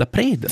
La preda.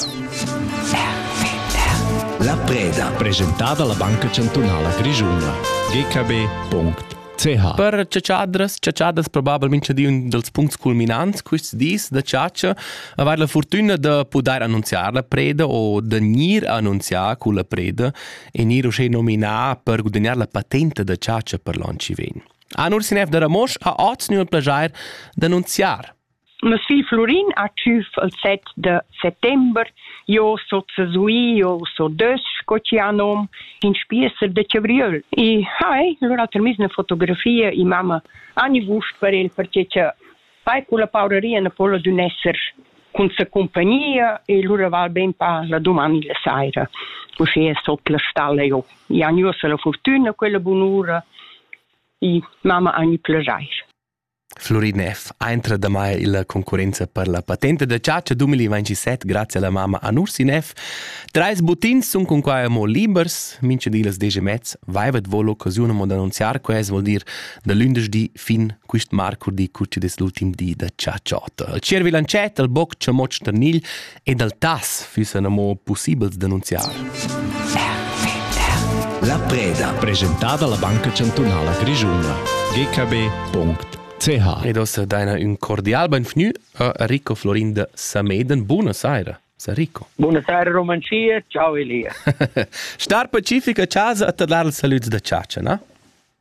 La preda. Presentada la Banca Chantunala Grischuna. gkb.ch Per ciacciadras, ciacciadras probabilmente di un dels punts culminants questi dis da ciaccia, aver la fortuna da poter annunziar la preda o da gnir annunziar con la preda e gnir uschè nominà per guadagnar la patente da ciaccia per l'on ci vegn. Anur Sinev da Ramosch ha oz nu il plagier d'annunziar Mes figl Flurin ha tschüf il set da settember. Io so zesui, io so desch, sco chi ha nom, in spiesser da chavriöl. E hai, lura ha termis üna fotografia e mamma ani gust per el perche cha fai culla pauraria na po'la dun esser cun sa compagnia e lura val ben pa la dumani la saira. Uschia es ot la stalla jo. I han uossa la fortüna, quella bunura e mamma ani plaschair. Florinef ha entra damai illa concurrenza per la patenta da chatscha 2027 grazie alla mamma an Ursinev. Treis buttins sun cunquai amo libers, mincha di las desch e mez vaivat vo l'occasiun amo d'annunziar quest, vuol dir da lündeschdi fin quist marcurdi cur chi'd es l'ultim di da chatscha ota. Il tschiervi lancet, il boc chamotsch tarnigl ed al tas füssan amo pussibels d'annunziar. La preda presentada alla Banca Chantunala Grischuna gkb.ch Ed ossa daina ün cordial benvgnü a Rico Florinda Sameden. Buna saira, Sarico. Buna saira Romancia, ciao Elia. Star pacifica a casa a te dar il saluts da ciacia, na?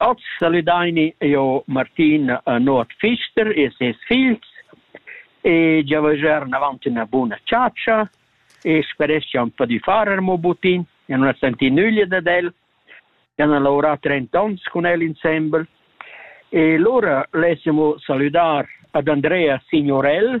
Oz saludaini eu Martin a Nuot Pfister e ses figls e giavaschar inavant üna buna chatscha e speresch cha ün po di farer mo butin, ja nun as senti nüglia dad el, ja n'ha laurà trent ons cun el insembel e lura lessemo salüdar ad Andrea Signorell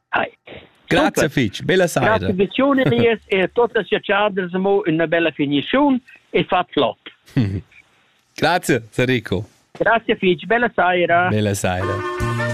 Hi. Grazie fitch, bella saira. Grazie visione lies e totas ja chargers mo una bella finizione e fa flop. Grazie Federico. Grazie Fitch, bella saira. Bella saira.